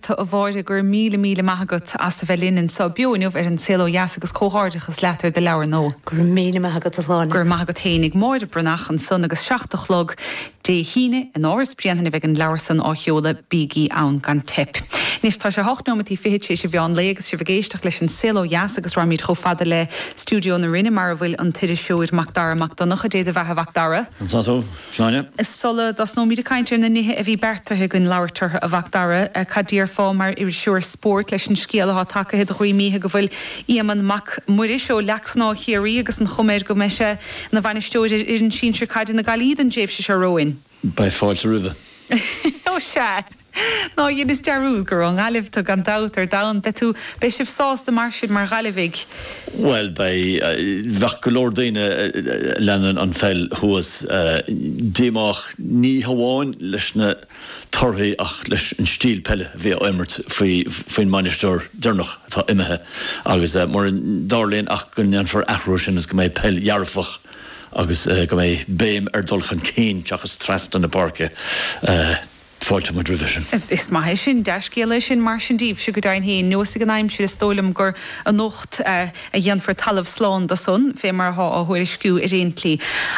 Tá. A Mháire, go raibh míle míle maith agat as a bheith linn anseo beo inniu ar An Saol Ó Dheas agus comhghairdeachas leat ar do leabhar nua. Go raibh maith agat. Go raibh maith agat féinig. Máire Breathnach ansan agus a seacht a chlog Dé hAoine in Áras Bréanainn a bheidh an leabhar san á sheoladh, bígí ann gan teip. Anois tá sé hocht nóimeataí fichid tar éis an mheán lae agus sibh ag éisteacht leis An Saol Ó Dheas agus raghaimid chomh fada le stiúideo na Rinne mar a bhfuil an t-iriseoir Macdara Mac Donncha, Dé do bheathasa a Mhacdara! Shláine. Sula dtosnóimid ag caint ar na nithe a bhí beartaithe againn labhairt orthu, a Mhacdara, cad déarfá, mar iriseoir spóirt, leis an scéal atá tagaithe do dhruim oíche go bhfuil Éamonn Mac Muiris, ó Leac Snámha i gCiarraí, agus an chuma air go mbeidh sé ina bhainisteoir ar fhoireann sinsir caide na Gaillimhe don dtréimhse seo romhainn? Beidh fáilte roimhe. Ó sea! Ná dheineas dearúd gur ón nGaillimh tú gan dabht ar domhan. Beidh tú, beidh sibh sásta mar sin mar Ghaillimhigh? Bhuel, beidh, bheadh go leor daoine a leanann an pheil thuas díomách ní hamháin leis na torthaí ach leis an stíl peile a bhí á imirt faoi, faoin mbainisteoir deireanach atá imithe agus mura dtarlaíonn ach go ndéanfar athrú ar sin agus go mbeidh peil dhearfach agus go mbeidh béim ar dul chun cinn seachas trasna na páirce. Fáilteoidh muid roimhe sin. Is maith é sin. Dea-scéala é sin mar sin daoibhse, go deimhin féin. Neosfaidh an aimsir, is dóigh liom gur anocht a dhéanfar talamh slán de san, fé mar atá á thuairisciú ar aon tslí.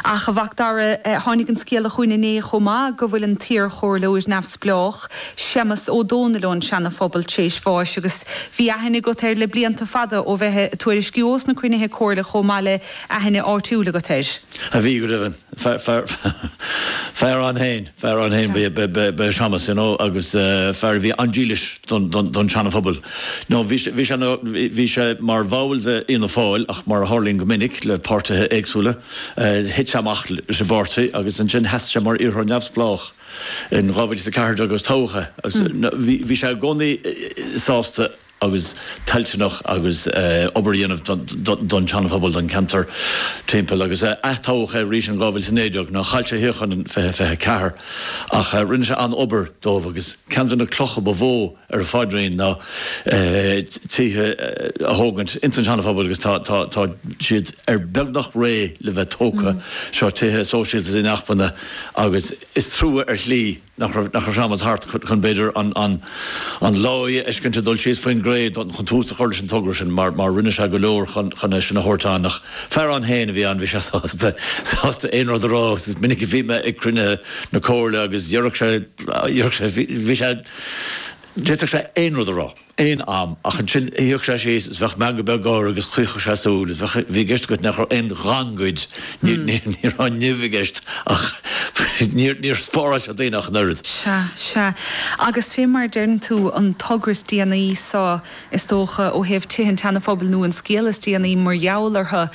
Ach, a Mhacdara, tháinig an scéala chugainn inné chomh maith go bhfuil an t-iarchomhairleoir neamhspleách, Séamas Ó Dónaill ón Seana-Phobal, tar éis bháis, agus bhí aithne agat air le blianta fada ó bheith ag tuairisciú ós na cruinnithe comhairle chomh maith le haithne áitiúil agat air. Á bhí, go deimhin. fear ann féin, fear ann féin ba ea Séamas, you know, agus fear a bhí an-dílis don tSeana-Phobal. Now, bhí sé, bhí sé, bhí sé mar bhall de Fhianna Fáil ach mar a tharlaíonn go minic le páirtithe éagsúla, thit sé amach leis an bpáirtí agus ansin sheas sé mar iarrthóir neamhspleách in 2014 agus toghadh é. Bhí sé i gcónaí sásta. agus toilteanach obair a dhéanamh don tSeana-Phobal, don cheantar timpeall, agus ath-toghadh é arís in 2019, now chaill sé a shuíochán in 2024, ach rinne sé an-obair dóibh, agus ceann de na clocha ba mhó ar a phaidrín ná tithe a thógaint ins an Seana-Phobal, agus tá siad ar beagnach réidh le bheith tógtha. Seo tithe sóisialta inacmhainne, agus is trua ar shlí, nach raibh Séamas thart chun, b'fhéidir, an láí a fheiscint ag dul síos faoin gcré chun tús a chur leis an togra sin, mar mar rinne sé go leor chun é sin a thabhairt ann. Ach fear ann féin a bhí ann, bhí sé sásta, sásta aon rud a rá, agus is minic a bhí mé ag cruinnithe na Comhairle agus dhéarfadh sé, dhéarfadh sé, bhí sé, d'fhéadfadh sé aon rud a rá. aon am, ach ansin shuíodh sé síos is bheadh meangadh beag air agus chaochadh sé súil is bheadh, bhí i gceist agat nach raibh aon ghangaid, ní raibh an nimh i gceist ach níor spáráil sé daoine ach an oiread. Sea, sea. Agus fé mar a deireann tú, an togra is déanaí so, is dócha, ó thaobh tithe an tSeana-Phobail nó an scéal is déanaí mar gheall orthu,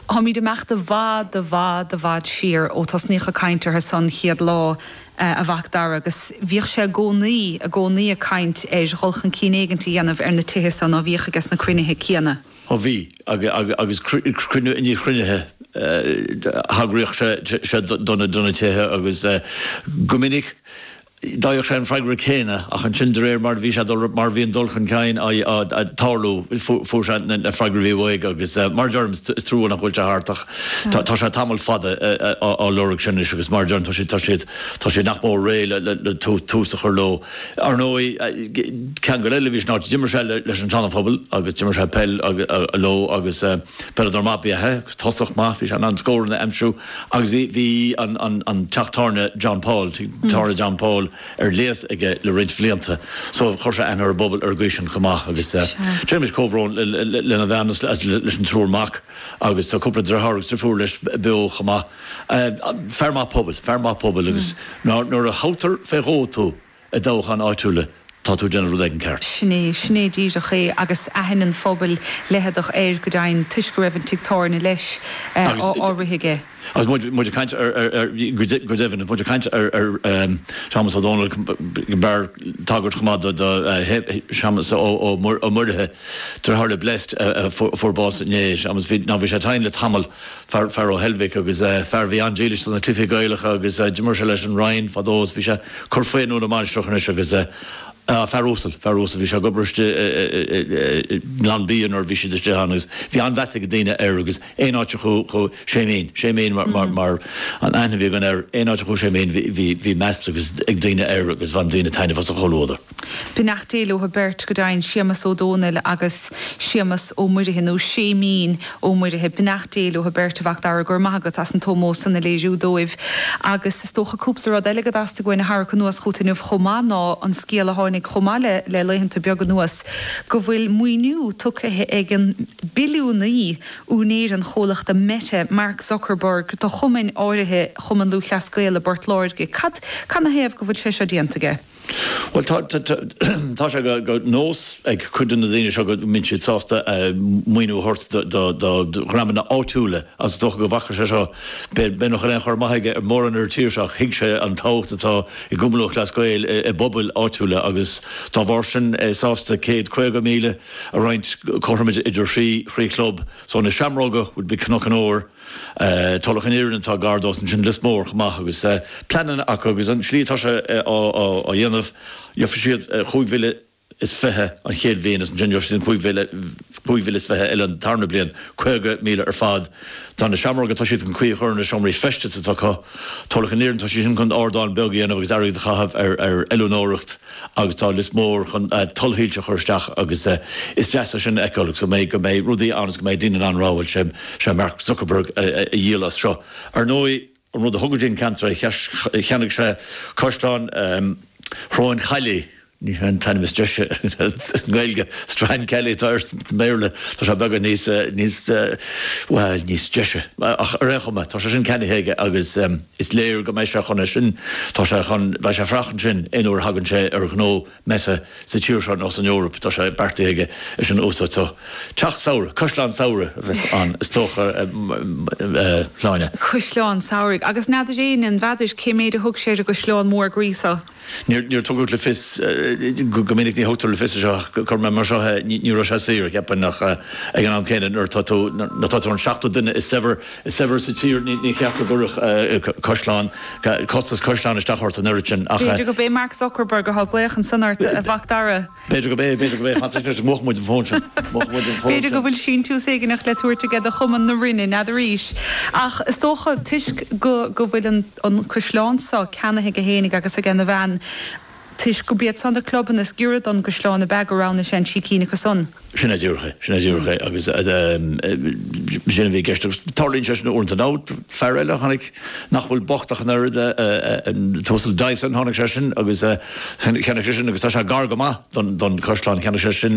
Táimid ag imeacht i bhfad, i bhfad, i bhfad siar ó tosnaíodh ag caint orthu san an chéad lá, a Mhacdara, agus bhíodh sé i gcónaí, i gcónaí ag caint ar dhul chun cinn éigint a dhéanamh ar na tithe so ná bíodh, aiges na cruinnithe céanna. Ó bhí, agus cruinniú i ndiaidh chruinnithe thagraíodh sé do na tithe agus go minic d'fhaigheadh sé an freagra céanna, ach ansin, de réir mar a bhí sé ag dul, mar a bhí an dul chun cinn ag tarlú, fuair sé na freagraí a bhí uaidh agus mar a deirim, is trua nach bhfuil sé thart ach tá sé tamall fada á lorg sin anois agus mar a deirim, tá siad nach mór réidh le tús a chur leo. Ar ndóigh, ceangal eile a bhí san áit, d'imir sé leis an Seana-Phobal agus d'imir sé peil leo agus peileadóir maith ab ea é, tosach maith, bhí sé in ann scóranna a aimsiú. Agus bhí an teach tábhairne John Paul, tigh tábhairne John Paul, ar léas aige le roinnt bhlianta. So chuir sé aithne ar an bpobal ar an gcaoi sin chomh maith. Agus déanaimid comhbhrón lena bhean is leis an triúr mac agus tá cúpla dritheár agus drifiúr leis beo chomh maith. Fear maith pobail, fear maith pobail agus nuair a thoghtar fé dhó tú, I dtoghcháin áitiúla, tá tú ag déanamh rud éigin ceart. Sin é, sin é díreach é agus aithne an phobail leitheadach air go deimhin toisc go raibh an tigh tábhairne leis á rith aige. Agus muid ag caint ar, go deimhin, is muid ag caint ar Shéamus Ó Dónaill, go mb'fhearr tagairt chomh maith do Shéamus Ó Muirithe, deartháir le Blessed a fuair bás inné, ná bhí sé tinn le tamall fear, fear ó Heilbhic, agus fear a bhí an-dílis do na cluichí Gaelacha agus d'imir sé leis an Rinn fadó agus bhí sé ag cur faoi i nDún na Mainistreach anois agus eh. fear uasal, fear uasal, bhí sé ag obair istigh i nGlanbia nuair a bhí siad istigh ann agus bhí an-mheas ag daoine air agus aon áit a chuaigh Séimín, Séimín mar an aithne a bhí againn air, aon áit a chuaigh Séimín bhí meas agus ag daoine air agus bhain daoine taitneamh as a chomhluadar. Beannacht Dé leothu beirt, go deimhin, Séamas Ó Dónaill agus Séamas Ó Muirithe, nó Séimín Ó Muirithe. Beannacht Dé leothu beirt, a Mhacdara, go raibh maith agat as an t-ómós san a léiriú dóibh, agus is dócha cúpla rud eile go dteastaigh uainn a tharrac anuas chugat inniu chomh maith, ná an scéala a tháinig chomh maith le laethanta beaga anuas go bhfuil maoiniú tugtha ag an billiúnaí, úinéir an chomhlachta Meta, Mark Zuckerberg, do chumainn áirithe, Chumann Lúthchleas Gael i bPort Láirge. Cad 'na thaobh go bhfuil sé seo déanta aige? Bhuel, tá, tá sé de nós ag cuid de na daoine seo go mbíonn siad sásta maoiniú a thabhairt do, do dhreamanna áitiúla agus is dócha go bhfaca sé seo, b'fhéidir nach aon chur amach aige ar mhórán ar an tír seo ach thuig sé an tábhacht atá i gCumann Lúthchleas Gael i bpobail áitiúla agus dá bharr sin, é sásta céad caoga míle a roinnt cothrom idir thrí, thrí chlub. So na Seamróga would be Cnoc an Óir. Tulach an Earraigh atá gar dó ansin, Lios Mór chomh maith agus pleananna acu agus an tslí atá sé á dhéanamh, gheobhaidh siad chúig mhíle is fiche an chéad bhliain is ansin gheobhaidh siad an chúig mhíle is fiche eile an tarna bliain, caoga míle ar fad. Tá na Seamróga, tá siad chun caoi a chur ar na seomraí feistis atá acu. Tulach an Earraigh, tá siad sin chun ardán beag a dhéanamh agus airgead a chaitheamh ar oiliúnóireacht. agus tá Lios Mór chun tuilsoilse a chur isteach agus is deas é sin a fheiceáil agus go mbeidh rudaí ann agus go mbeidh daoine in ann rá bhuel sé, sé Mark Zuckerberg a dhíol as seo. Ar ndóigh an rud a thug go dtí an ceantar é cheannaigh sé caisleán Shróin Chaillí, ní hé an t-ainm is deise sa nGaeilge, Strancally atá air sa mBéarla, tá sé beagán níos bhuel níos deise ach ar aon chuma tá sé sin ceannaithe aige agus, Is léir go mbeidh sé chun é sin, tá sé chun, beidh sé ag fanacht ansin aon uair a thagann sé ar ghnó Meta sa tír seo nó san Eoraip, tá sé beartaithe aige é sin a úsáid. So. Teach samhraidh, caisleán samhraidh a bheas ann is dócha, a Shláine. Caisleán samhraidh. Agus n'fheadar éinne, n'fheadar, cé méid a thug sé ar an gcaisleán mór groí seo. Níor tugadh le fios, go minic ní thugtar le fios é seo ach cuirfidh mé mar seo é, ní raibh sé saor, cheapfainn, ach ag an am céanna nuair atá tú, nuair atá tú an seachtú duine is saibhre, is saibhre sa tír, ní cheart go gcuirfeadh caisleán, costas caisleáin isteach ort an oiread sin ach. B'fhéidir gurb é Mark Zuckerberg a thug glaoch ansan ort, a Mhac Dara. B'fhéidir gurb é, b'fhéidir gurb é, fan, anois mhúch muid an fón sin, mhúch muid an fón sin. B'fhéidir go bhfuil síntiús éigin le tabhairt aige do Chumann na Rinne, n'fheadar arís, ach is dócha, toisc go bhfuil an caisleán so ceannaithe aige fhéinig agus aigena bhean, toisc gurb iad so na clubanna is giorra don gcaisleán ab ea go roghnaigh sé an trí cinn acu san. Sin díreach é, sin díreach é agus b'shin a bhí i gceist agus tarlaíonn sé sin uaireanta. Nó fear eile a tháinig. nach bhfuil bocht ach an oiread, an tUasal Dyson, tháinig sé sin agus cheannaigh sé sin agus tá sé gar go maith don don chaisleán, cheannaigh sé sin